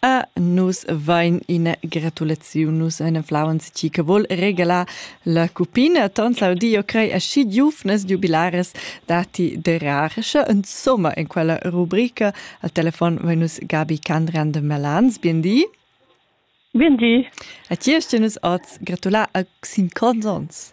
A nus vain ina gratulaziun, nus ein flauns chi che vol regalar la cupina ton saudio crei aschi giuvnas jubilares dati de rar. Sche insomma in quella rubrica al telefon vai nus Gabi Kandran de Melans, bien di. Bien di. A ti hast nus oz gratular a sin consons.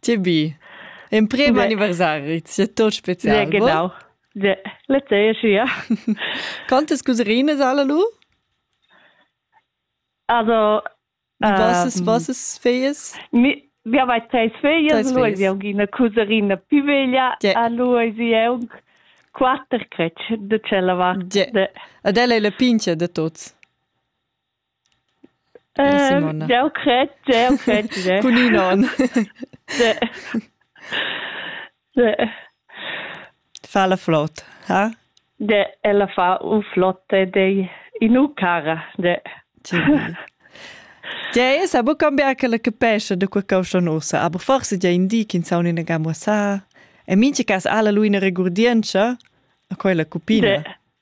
Tge bi! Emprem anniversari, sia tot spezial. Ja, genau. Ja, le tgei schia. Quantas cuserinas alle lu? Also, Vossas, ähm, vossas feias? Mi, wir haben zwei Feias, lui sie una couserina più veglia, yeah. a lui sie è un quatter crec de cella vart. Yeah. Ad ella è la pincia de tots. Jau cred, jau cred tge. Cun in onn. Tge. Tge. Fa la flot, ha? De, ella fa un flotte de inu cara. De. Tge è sa bu cambiar che la capescia de quei causchon ussa, aber forse già in di che saun in gamma sa. E minchi cas ha la lui una regurdienza a quella cupina. De.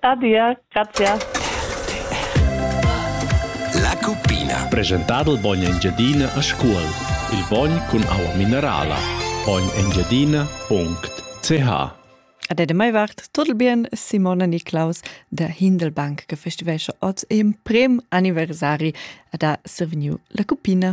Adia, grazie. La cuppina. Presentà dal bogn Engiadina a Scuol. Il bogn cun aua minerala. bognengiadina.ch Ad edem mai vart tot il bien Simona Niclaus da Hindelbank che festivesce oz in prim anniversari ad ha survegniu la cuppina.